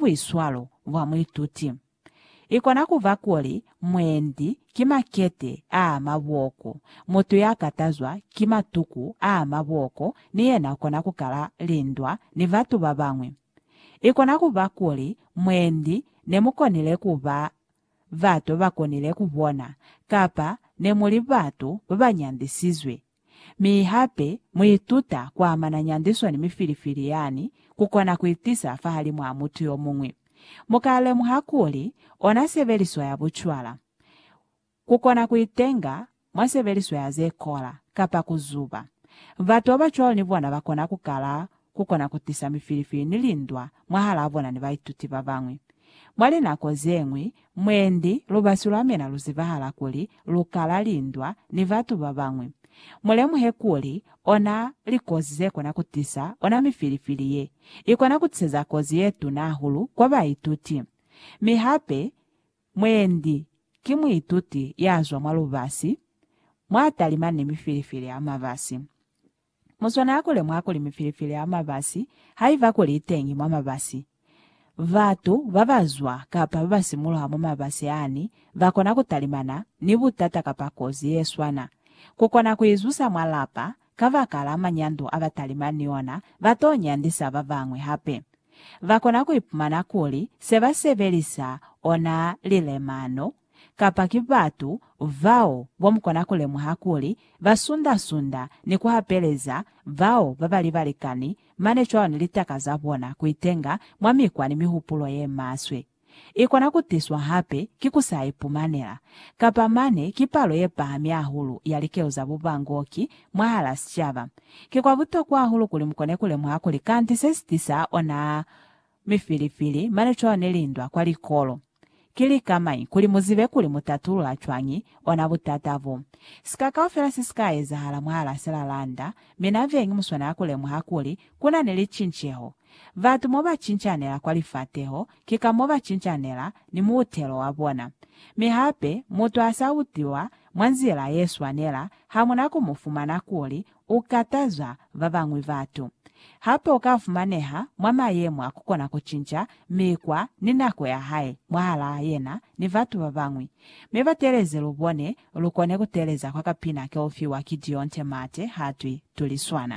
buiswalo bwa muituti. I kona ku ba kuli mwendi ki makete a mabooko, mutu ya katazwa ki matuku a mabooko ni yena u kona ku kala lindwa ni batu ba bañwi. I kona ku ba kuli mwendi ne mu konile ku ba bato ba konile ku bona kapa ne mu li batu ba ba nyandisizwe Mi hape mu ituta ku amana nyandiso ni mifilifili yani ku kona ku itisa fahalimw'a mutu yo muñwi. Mu ka lemuha kuli ona sebeliso ya bucwala, ku kona ku itenga mwa sebeliso ya ze kola, kapa ku zuba. Batu ba bacwalo ni bona ba kona ku kala ku kona ku tisa mifilifili ni lindwa mwahalaa bona ni baituti ba bañwi. Mwa linako ze ñwi, mwendi lubasi lwa mina lu zibahala kuli lu kala lindwa ni batu ba bañwi. Mu lemuhe kuli ona likozi ze kona ku tisa ona mifilifili ye, i kona ku tiseza kozi ye tuna hahulu kwa baituti. Mi hape, mwendi ki muituti ya zwa mwa lubasi, mwa talima ni mifilifili ya mabasi. Muswana a kule mwa kuli mifilifili ya mabasi ha i ba kuli i teñi mwa mabasi. Batu ba ba zwa kapa ba ba simuluha mwa mabasi ani ba kona ku talimana ni butata kapa kozi ye swana ku kona ku i zusa mwa lapa. Kabakala manyando a ba talimani ni ona, ba t'o nyandisa ba bañwi hape. Ba kona ku ipumana kuli se ba sebelisa ona lilemano. kapa ki batu bao bomukona kulemuha kuli basunda-sunda ni kuhapeleza bao babali balikani mane cwalo ni litaka zabona kuitenga mwa mikwa ni mihupulo yemaswe. Ikona kutiswa hape ki kusa ipumanela, kapa mane ki palo yepahami hahulu ya likelo za bubangoki mwahala sicaba. Ki kwa butokwa hahulu kuli mukone kulemuha kuli kanti sesitisa ona Mi fili-fili, mane cwalo ne li ndwa kwa likolo. Ki lika mañi kuli mu zibe kuli mu tatulula cwañi ona butata bo? Sika kaufela se si ka ezahala mwahal'a se la landa, mi na vengi mu swanela ku lemuha kuli ku na ni licinceho. Batu mo ba cincanela kwa lifateho, ki ka mo ba cincanela ni muutelo wa bona. Mi hape, mutu ha s'a utiwa mwa nzila ye swanela, ha mu na ku mu fumana kuli u kataza ba bañwi batu. Hape u ka fumaneha mwa mayemo a ku kona ku cinca mikwa ni nako ya hae mwahalaa yena ni batu ba bañwi. Mi ba teeleze lu bone, lu kone ku teeleza kwa kapina ke u fiwa ki Dionte Mate ha twi, Tuliswana.